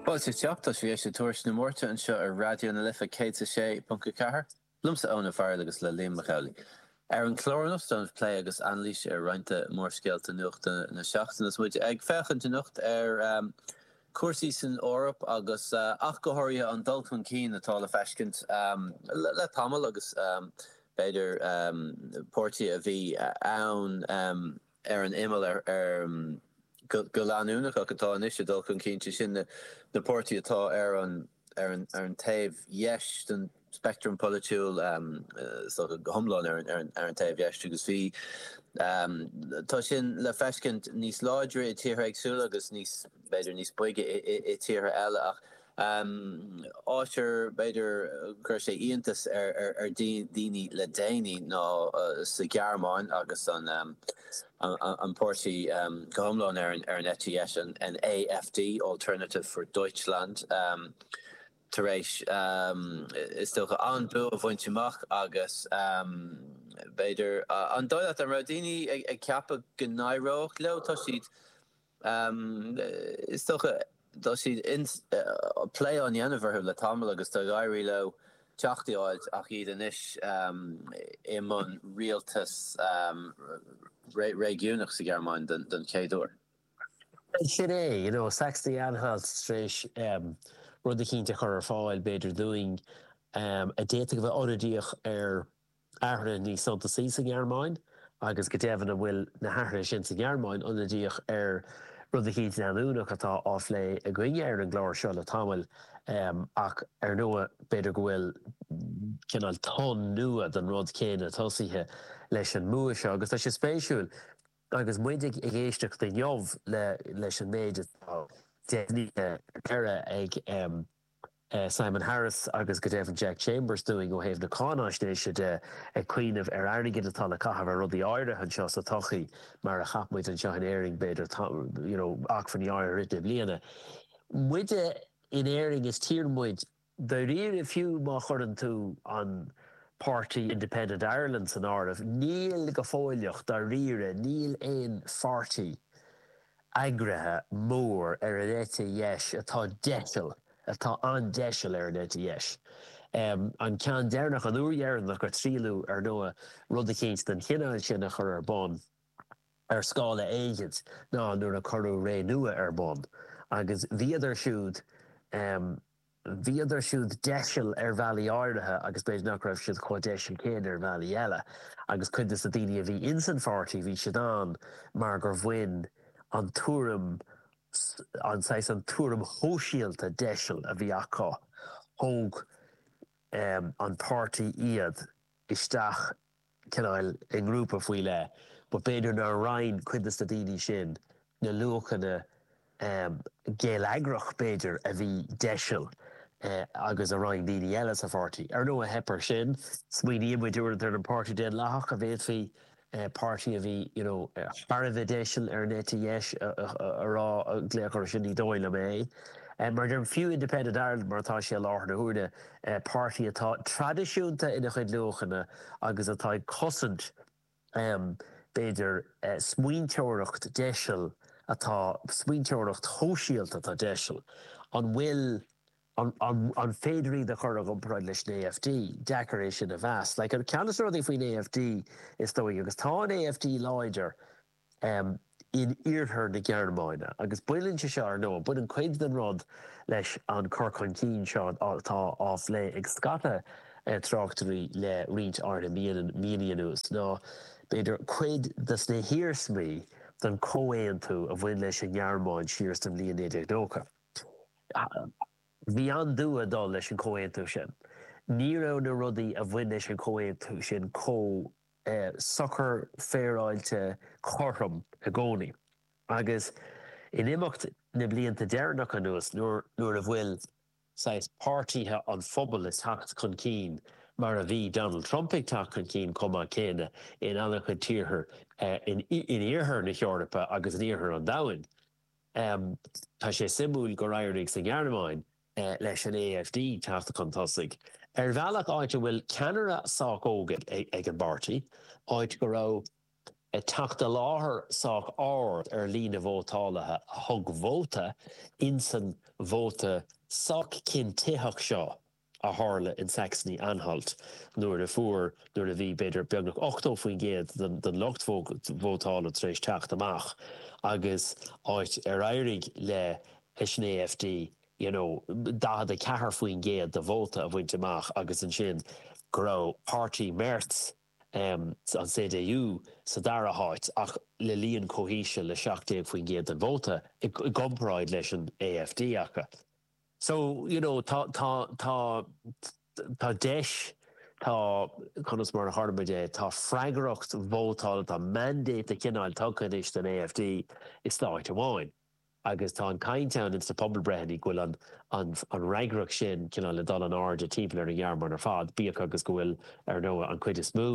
Fáilte isteach, tá sibh ag éist le Tuairisc na Márta anseo ar Raidió na Life 106.4, liomsa Eoin Ó Fearghail agus le Liam Mac Amhlaigh. Ar an chlár anocht ag déanamh plé agus anailís ar roinnt de mhórscéalta nuachta na seachtaine is muid ag féachaint anocht ar chúrsaí san Eoraip agus ach go háirithe an dul chun cinn atá le feiscint le tamall agus b'fhéidir páirtithe a bhí ann ar an imeall go leanúnach ach atá anois ag dul chun cinn, sé sin na páirtithe atá ar an taobh dheis den speictream polaitiúil, so iomlán ar an taobh dheis, agus bhí, tá sin le feiscint níos láidre i dtíortha éagsúla agus níos, b'fhéidir, níos boige i dtíortha eile ach, Áit ar b'fhéidir go gcuir sé íontas ar daoine le déanaí ná sa Ghearmáin agus an páirtí go hiomlán ar an eite dheis, an AfD, Alternative for Deutschland, tar éis, is dócha, an-bua a bhaint amach agus, b'fhéidir, an doiligheacht, an raibh daoine ag ceapadh go n-éireoidh leo? Tá siad. Is dócha, tá siad plé á dhéanamh orthu le tamall agus tá ag éirí leo teacht i áit ach iad anois i mbun rialtas réigiúnach sa Ghearmáin don chéad uair. Sin é, you know, Saxony-Anhalt tar éis rud eicínt a chur ar fáil, b'fhéidir, dúinn a d'fhéadfadh a bheith ionadaíoch ar athruithe níos suntasaí sa nGearmáin agus go deimhin an bhfuil na hathruithe sin sa nGearmáin ionadaíoch ar rud eicínt leanúnach atá á phlé againne ar an gclár seo le tamall ach ar ndóigh b'fhéidir go bhfuil cineál tonn nua den rud céanna tosaithe leis an mbua seo agus tá sé spéisiúil agus muid ag éisteacht inniu leis an méid atá deimhnithe ar deireadh ag Simon Harris agus go deimhin Jack Chambers dúinn ó thaobh na cáinaisnéise de, ag cuimhneamh ar airgead atá le caitheamh ar rudaí áirithe anseo sa todhchaí, mar a cheap muid anseo in Éirinn, b'fhéidir, you know, acmhainní áirithe rite i mbliana. Muid in Éirinn, is tír muid, dáiríre, fiú má chuireann tú an páirtí Independent Ireland san áireamh, níl go fóilleach, dáiríre, níl aon pháirtí eagraithe mór ar an eite dheis atá deiseal, atá an-deiseal ar an eite dheis. An ceann deireanach, an uair dheireanach a triaileadh, ar ndóigh, rud eicínt den chineál sin a chur ar bun, ar scála éigint, ná nuair a cuireadh Renua ar bun. Agus bhíodar siúd. Bhíodar siúd deiseil ar bhealaí áirithe agus b'fhéidir nach raibh siad chomh deiseil céanna ar bhealaí eile. Agus cuid de na daoine a bhí ins an pháirtí, bhí siad ann mar gur bhain an tuairim, an saghas, an tuairim shóisialta deiseil a bhí acu, thóg an páirtí iad isteach. cineál i ngrúpa faoi leith, but b'fhéidir nár roinn cuid de na daoine sin na luachanna geilleagracha, b'fhéidir, a bhí deiseil agus a roinn daoine eile sa pháirtí. Ar ndóigh, theip ar sin. Smaoiníonn muid uaireanta ar an Páirtí Daonlathach, a bhféadfaí páirtí a bhí you know thar a bheith deiseil ar an eite dheis a rá, a ghlaoch air sin, ní dóigh liom é. Mar a deirim, fiú Independent Ireland mar atá sé i láthair na huaire, páirtí atá traidisiúnta ina chuid luachanna agus atá ag cosaint, b'fhéidir, smaointeoireacht deiseil atá, smaointeoireacht shóisialta atá deiseil. An bhfuil, an féidir iad a chur i gcomparáid leis an AfD? Deacair é sin a mheas. Like, ceann de na rudaí faoin AfD, is dóigh, agus tá an AfD láidir, in iarthar na Gearmáine. Agus baineann sé seo, ar ndóigh, baineann cuid den rud leis an chur chun cinn seo atá á phlé ag scata tráchtairí le roinnt áirithe míonna anuas, nó b'fhéidir cuid de na hiarsmaí den chomhaontú a bhain leis an nGearmáin siar sa bhliain 1990. Bhí an-dua ag dul leis an chomhaontú sin. Ní raibh na rudaí a bhain leis an chomhaontú sin chomh socair féaráilte cothrom i gcónaí agus in imeacht na blianta deireanach anuas nuair a bhfuil saghas páirtithe an phobail ag teacht chun cinn mar a bhí Donald Trump ag teacht chun cinn chomh maith céanna in an-chuid tíortha in iarthar na hEorpa agus in iarthar an domhain. Tá sé suimiúil gur éirigh sa nGearmáin. leis an AfD teacht chun tosaigh, ar bhealach, áit a bhfuil ceannaire sách óg ag an bpáirtí, áit go raibh teacht i láthair sách ard ar líon na vótálaithe a thug vóta insan vóta sách cinntitheach seo a tharla in Saxony-Anhalt nuair a fuair, nuair a bhí, b'fhéidir, beagnach 80% den lucht vótála tar éis teacht amach agus áit ar éirigh le leis an AfD, you know, 44% de vóta a bhaint amach agus ansin go raibh páirtí Merz, em, an CDU, sa dara háit ach le líon chomh híseal le 17% den vóta i gcomparáid leis an AfD acu. So, you know, tá, tá, tá, tá deis, tá, conas mar a déarfaidh muid é, tá freagracht vótála, tá mandate de chineál tugtha anois don AfD i stát amháin. agus tá an chaint ann ins na pobalbreitheanna go bhfuil an an an fhreagracht sin cineál le dul in airde timpeall ar an nGearmáin ar fad, bíodh agus go bhfuil, ar ndóigh, an chuid is mó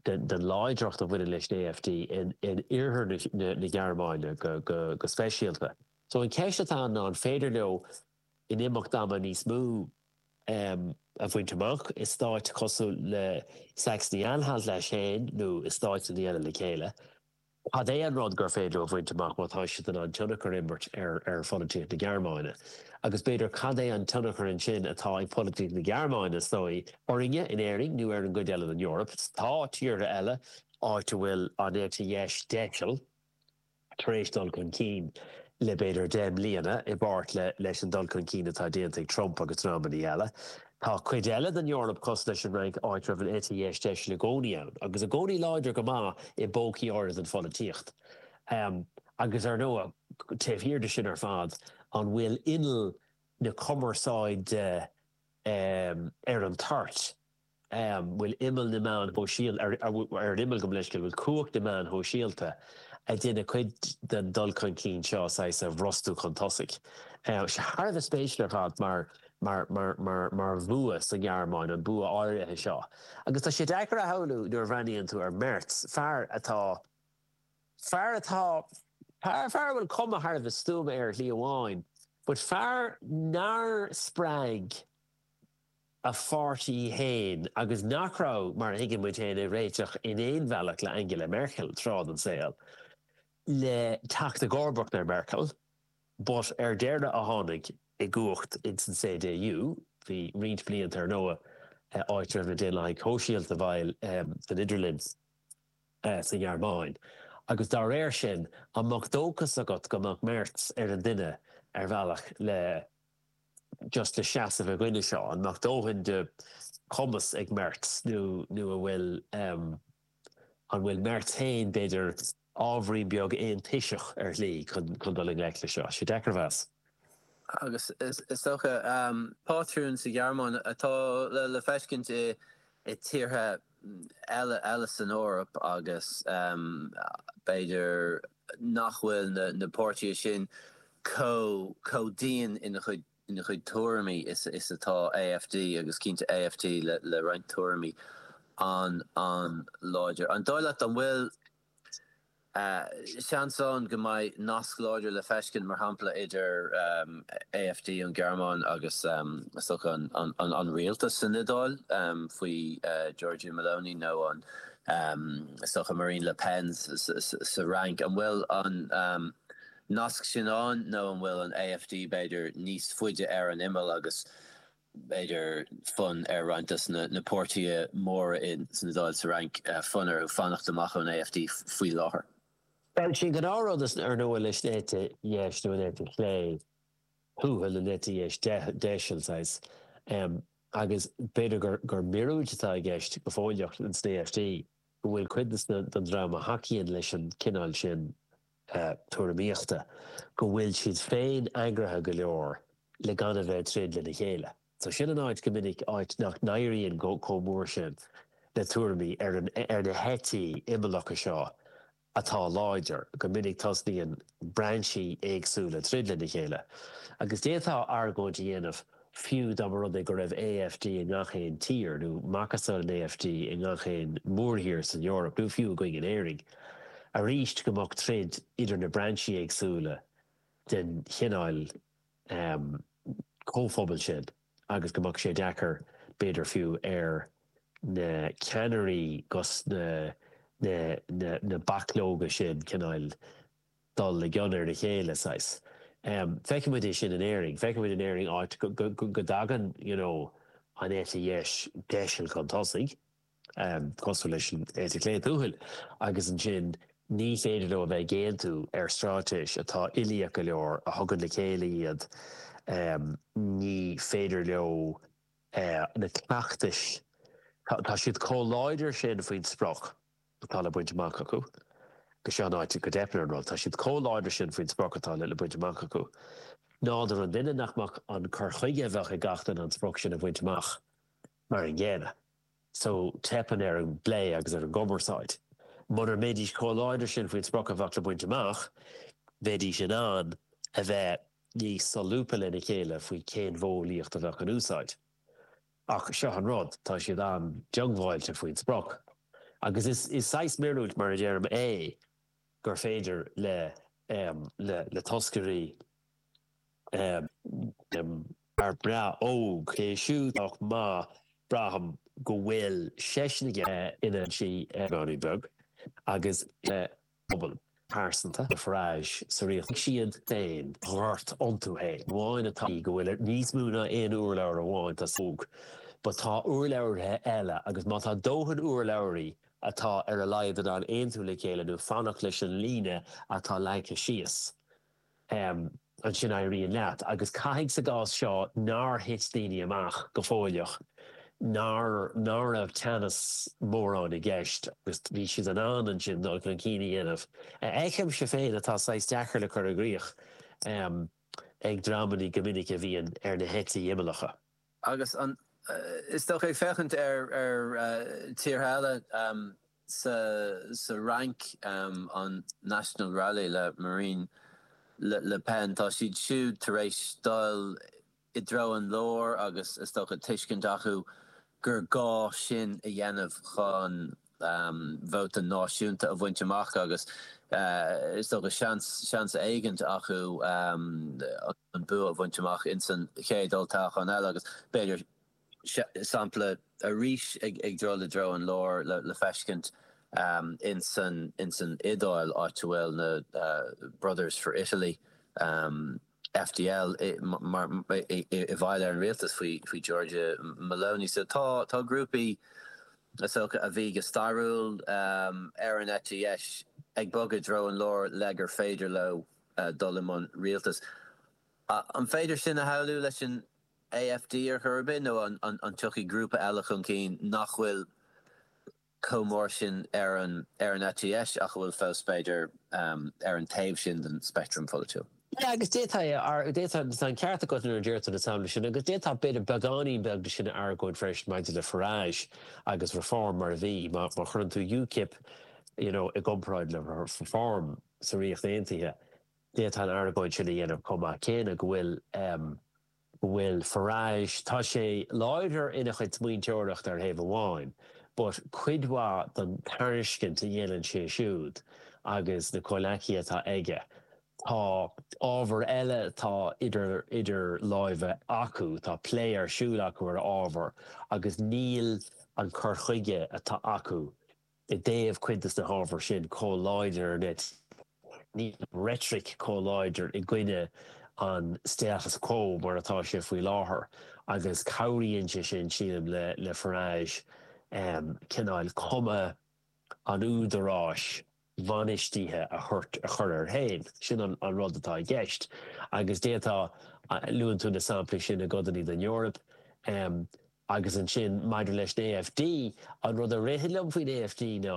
den den láidreacht a bhaineann leis an AfD in in oirthear na na na Gearmáine go go go speisialta. So an cheist atá ann ná an féidir leo in imeacht ama níos mó ehm a bhaint amach i stáit cosúil le Saxony-Anhalt leis féin nó i stáit eile le chéile Cad é an rud gur féidir a bhaint amach má tá siad in ann tionchar a imirt ar pholaitíocht na Gearmáine? Agus b'fhéidir, cad é an tionchar ansin atá ag polaitíocht na Gearmáine, is dóigh, orainne in Éirinn nó ar an gcuid eile den Eoraip? Tá tíortha eile, áit a bhfuil an eite dheis deiseal, tar éis dul chun cinn le b'fhéidir deich mbliana, i bpáirt leis an dul chun cinn atá déanta ag Trump agus dreamanna eile. Tá cuid eile den Eoraip cosúil leis an Fhrainc, áit a raibh an eite dheis deisil i gcónaí ann, agus i gcónaí láidir go maith i bpócaí áirid den pholaitíocht. Agus ar ndóigh, taobh thiar de sin ar fad, an bhfuil inneall na cumarsáide ar an toirt? An bhfuil inneall na meáin shóisialta ar an inneall, gabh mo leithscéal? An bhfuil cumhacht na meáin shóisialta, ag déanamh cuid den dul chun cinn seo saghas a bhrostú chun tosaigh? Thar a bheith spéisiúil ar fad mar. mar bhua sa nGearmáin, an bua áirithe seo. Agus tá sé deacair a shamhlú, nuair a bhreathnaíonn tú ar Merz, fear atá, fear atá, fear, fear a bhfuil cuma thar a bheith stuama air ar shlí amháin, but fear nár spreag a pháirtí féin agus nach raibh, mar a thuigeann muid féin, ag réiteach in aon bhealach le Angela Merkel tráth den saol, le teacht i gcomharbacht ar Merkel. But ar deireadh a tháinig i gcumhacht ins an CDU, bhí roinnt blianta ar ndóigh, áit a raibh na Daonlathaigh Shóisialta bhaill san idirlinn sa nGearmáin. Agus dá réir sin, an mbeadh dóchas agat go mbeadh Merz ar an duine, ar bhealach, le just le seasamh i gcoinne seo? An mbeadh dóthain de chumas ag Merz nó an bhfuil an bhfuil Merz féin, b'fhéidir, Ábhairín beag aontoiseach ar shlí chun dul i ngleic leis seo. Tá sé deacair a mheas. Agus is dócha, pátrún sa Ghearmáin atá le feiscint i tíortha eile san Eoraip agus b'fhéidir nach bhfuil na páirtithe sin chomh dian ina chuid ina chuid tuairimí is atá AfD agus cinnte AfD le roinnt tuairimí an-láidir. An dóigh leat an bhfuil seans ann go mbeidh nasc láidir le feiscint, mar shampla, idir AfD an Ghearmáin agus an rialtas san Iodáil faoi Giorgia Meloni nó Marine Le Pen sa Fhrainc? An bhfuil an. nasc sin ann nó an bhfuil an AfD, b'fhéidir, níos faide ar an imeall agus, b'fhéidir, fonn ar roinnt de na páirtithe móra san Iodáil, sa Fhrainc, fonn orthu fanacht amach ón AfD faoi láthair. Bhuel, sin gnáthrud is ar ndóigh leis an eite dheis nó an eite chlé thuathail, an eite dheis deiseal, saghas, agus b'fhéidir gur míorúilt atá i gceist go huilíoch in sna AfD, go bhfuil cuid den dream a thacaíonn leis an cineál sin, tuairimíochta go bhfuil siad féin eagraithe go leor le gan a bheith ag troid lena chéile. So sin é an áit go minic, áit nach n-éiríonn chomh mór sin le tuairimí ar na heití imeallacha seo atá láidir, go minic tosnaíonn brainsí éagsúla ag troid lena chéile. Agus d'fhéadfá argóint a dhéanamh Fiú dá mba rud é go raibh AfD i ngach aon tír, nó macasamhail an AfD i ngach aon mhórthír san Eoraip, nó fiú againn in Éirinn, arís go mbeadh troid idir na brainsí éagsúla den chineál comhphobail sin agus go mbeadh sé deacair, b'fhéidir fiú, ar na ceannairí agus na bachlóga sin cineál, dul i gcion ar a chéile, saghas. Feiceann muid é sin in Éirinn. Feiceann muid in Éirinn áit go dtagann you know an eite dheis deiseal chun tosaigh, cosúil leis an eite chlé tuathail, agus ansin ní féidir leo a bheith ag aontú ar straitéis atá uilíoch go leor a thugann le chéile iad. Ní féidir leo na cleachtais, tá siad chomh láidir sin faoin sprioc, atá le baint amach acu. Seo an áit go dteipeann ar an rud, tá siad chomh láidir sin faoin sprioc atá le baint amach acu, nádúr an duine, nach mbeadh an cur chuige a bheadh ag gach duine an sprioc sin a bhaint amach mar an gcéanna. So, teipeann ar an bplé agus ar an gcumarsáid. Mura mbeidís chomh láidir sin faoin sprioc a bheadh le baint amach, bheidís in ann a bheith níos solúbtha lena chéile faoi cén mhodheolaíocht a bheadh in úsáid. Ach seo an rud, tá siad an-diongbháilte faoin sprioc. Agus is saghas míorúilt mar a deirim é gur féidir le toscairí ar Reddit, OK, siúd ach má bhraithim go bhfuil seisean ag iarraidh a n-insí go mbeag agus bpobal pearsanta, na Farage sa Ríocht, siad féin ghort iontu féin. amháin atá go bhfuil níos mó ná aon urlabhra amháin atá sa óg, but tá urlabhraithe eile agus má tá dóthain urlabhraí atá ar a laghad in ann aontú le chéile nó fanacht leis an líne atá leagtha síos, ansin éiríonn leat. Agus caithfidh sa gcás seo nár thit daoine amach go follasach, ná ná raibh teannas mórán i gceist agus bhí siad in ann ansin dul chun cinn a dhéanamh, a fheicimse féin atá saghas deacair le cur i gcrích ag dreamannaí go minic a bhíonn ar na heití imeallacha. Agus, is dócha, ag féachaint ar tíortha eile. Sa Fhrainc, an National Rally le Marine Le Pen, tá siad siúd tar éis dul i dtreo an lár agus, is dócha, tuiscint acu gur gá sin a dhéanamh chun vóta náisiúnta a bhaint amach agus, is dócha, seans éigint acu an bua a bhaint amach insan chéad olltoghchán eile agus, b'fhéidir, sampla arís ag dul i dtreo an lár le feiscint insan insan Iodáil, áit a bhfuil na Brothers for Italy, FDI, i bhfeighil ar an rialtas faoi Giorgia Meloni. So tá grúpaí, is dócha, a bhí go stairiúil ar an eite dheis ag bogadh i dtreo an lár le gur féidir leo dul i mbun rialtais. An féidir sin a shamhlú leis an AfD ar chor ar bith, nó an dtiocfaidh grúpa eile chun cinn nach bhfuil chomh mór sin ar an eite dheis ach a bhfuil fós, b'fhéidir, ar an taobh sin den speictream pholaitiúil? Agus d'fhéadfá, tá an ceart agat nuair a deir tú na samplaí sin, agus d'fhéadfá b'fhéidir beagáinín beag de sin a argóint freisin maidir le Farage agus Reform mar a bhí. Má chuireann tú UKIP, you know, i gcomparáid le Reform sa Ríocht Aontaithe, D'fhéadfá an argóint sin a dhéanamh chomh maith céanna go bhfuil, go bhfuil Farage, tá sé láidir ina chuid smaointeoireachta ar thaobh amháin but cuid mhaith den tairiscint a dhéanann sé siúd agus na comhleacaithe atá aige, tá ábhar eile atá idir, idir láimhe acu, tá plé ar siúl acu ar ábhar agus níl an cur chuige atá acu i dtaobh cuid de na hábhair sin chomh láidir nó níl an reitric chomh láidir i gcoinne an status quo mar atá sé faoi láthair agus cabhraíonn sé sin, sílim, le Farage cineál cuma an údaráis bhainistithe a chur air féin. Sin an rud atá i gceist agus d'fhéadfá, luann tú na samplaí sin i gcodannaí den Eoraip, Agus ansin, maidir leis an AfD, an rud a ritheann liom faoin AfD ná,